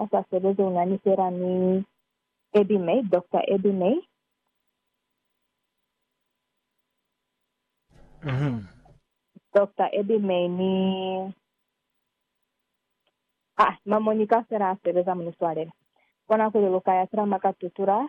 a sa sebezi u na ni fela ni Eddie May, Doctor Eddie May. Doctor Eddie May ni Ah, mwa Monica fela a sebeza mu ni swalela. Bona kuli lu ka ya fela mwa ka tutula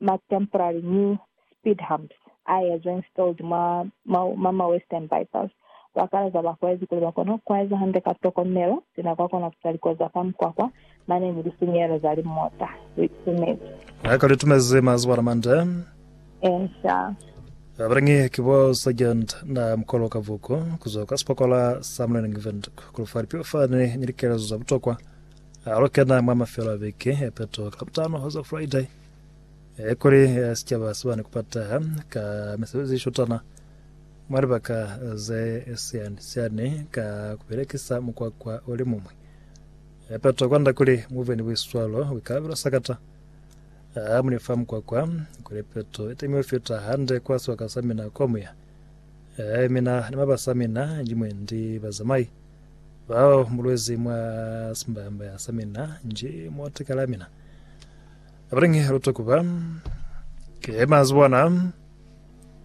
ma temporary new speed humps a ezwa installed mwa ma ma western bypass, ba kalaza bakwezi kuli ba kona ku eza hande ka tokomelo sina kwa kona ku sa likozi za fa mukwakwa, mane ni lisinyehelo za limota. Rip Sumezi. Lika li tumezi mazuba na mande. Insa. Abalingi ki bo Sergeant na Mkolo Kavuku kuzwa kwa sipokola sa Mleleng Windhoek kulufa lipilo fani ni likelezo za butokwa. Alu kena mwa mafelo a viki ya peto ka Labutano hoza Friday Eh, kuli eh, sicaba sibani kupataha ka misebezi ishutana mwa libaka ze siani siani ka kubelekisa mukwakwa oli mumwi. Eh, pato kwanda kuli muve ni buiswalo buikalabelo sakata ah, muli fa mukwakwa kuli peto itemiwe fita hande kwa sibaka sa mina kwa muya. Eh, mina ni mabasa mina njimwe ndi bazamai bao mulwezi mwa simbaya mbaya sa mina nji motikala mina. Abalingi ha lu takuba, ki mazi bona.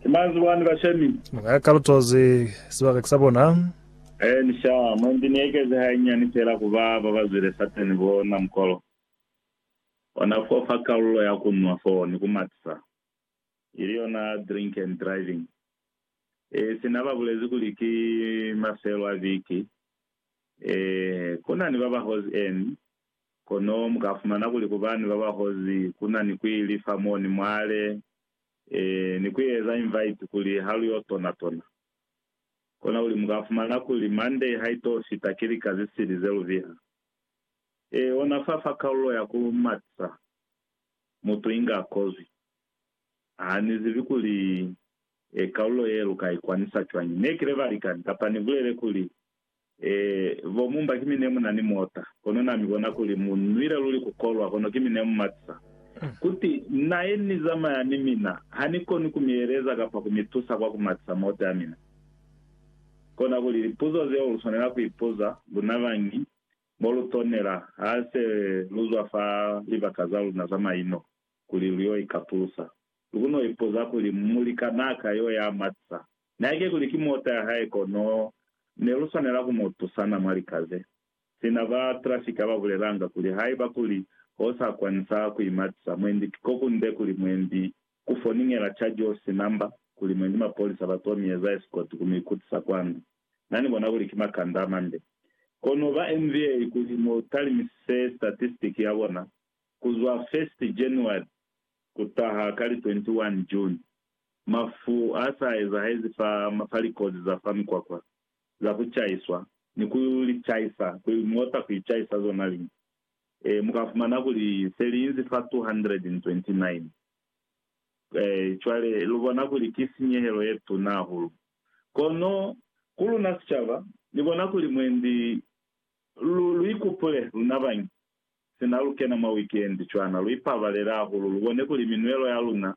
Ki mazi bwani bashemi. Ni nga ka lutozi sibaka ki sa bona. Ee, ni sha. Mwa ndi ni ekezi hainyiani fela ku ba ba ba zwile Satani bo na mukolo ona fo fa kalulo ya ku nwa foo ni ku matisa, ili yona drink and driving. Ee, sina ba bulezi kuli ki mafelo a viki. Ee, ku na ni ba ba hozi eni, Kono mu ka fumana kuli ku bani ba ba hozi ku na ni ku ili fa mo ni mwale, ee, ni ku eza invite kuli ha lu yo tona tona. Kona kuli mu ka fumana kuli Monday ha i to fita ki lika ze sili ze lu biha. Ee, ona fa, fa kalulo ya ku matisa, mutu inga a kozwi. Ha ni zibi kuli, ee, kalulo ye lu ka i kwanisa cwañi. Ne kile balikani, kapa ni bulele kuli, Ee, bo Mumba ki mi ne mu na ni mota, kono na mi bona kuli mu nwile luli ku kolwa, kono ki mi ne mu matisa. Kuti, Na ye ni zamaya ni mina, ha ni koni ku mi eleza kapa ku mi tusa kwa ku matisa mota ya mina. Kona kuli, lipuzo zeo lu swanela ku ipuza, luna bañi, mo lu tonela, ha se lu zwa fa libaka za luna za maino, kuli lu yo ikapulusa. Lu kono ipuza kuli, Mulikanaa ka yo ya matisa, Naike kuli ki mota ya hae kono ne lu swanela ku mu tusana mwa likaze. Sina ba trafika ba bulelanga kuli haiba kuli ho sa kwanisa ku imatisa mwendi kiko kunde kuli mwendi ku foningela charge office number kuli mwendi mapolisa ba to mi eza escort ku mi kutisa kwanda. Na ni bona kuli ki makanda a mande. Kono ba NVA kuli mu talimisise statistic ya bona ku zwa first January ku taha ka li 21 June. Mafu a sa ezahezi fa mapa likozi za fa mikwakwa, za ku caiswa, ni ku li caisa, ku mota ku icaisa zona liñi. E, mu ka fumana kuli se li inzi fa 229. E, cwale, lu bona kuli ki sinyehelo ye tuna hahulu. Kono, ku luna sicaba, ni bona kuli mwendi lu, lu ikupule, luna bañi. Sina lu kena mwa wikendi, cwana lu ipabalela hahulu lu bone kuli minwelo ya luna,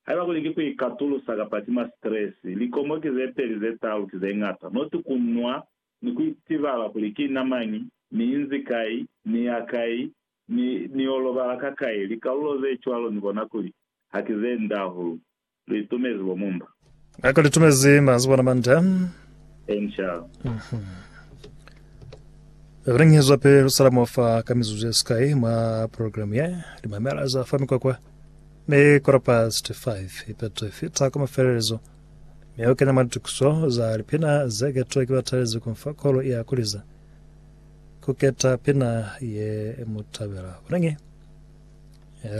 haiba kuli ki ku ikatulusa kapa ki ma stress, likomo ki ze peli ze talu ki ze ñata, not ku nwa ni ku itibala kuli ki na mañi, ni inzi kai, ni ya kai, ni, ni yo lobala ka kai. Likalulo ze cwalo ni bona kuli ha ki ze nde hahulu. Lu itumezi bo mumba. Na ka lu itumezi mazi bona manda. Enshal. Re ngi zwa pe lu sala mo fa ka mizuzu ye sikai mwa program ye. Li mamela za fa mikwakwa. Ne kora past 5 ipeto ifita kwa mafelelezo. Me o kenya mwa litukiso za lipina ze ketwe ki batalezi ku mfa kolo ya kuliza. Ku keta pina ye mu tabela. Kuna ngi.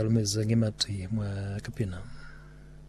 Lu mize ngi mati mwa ka pina.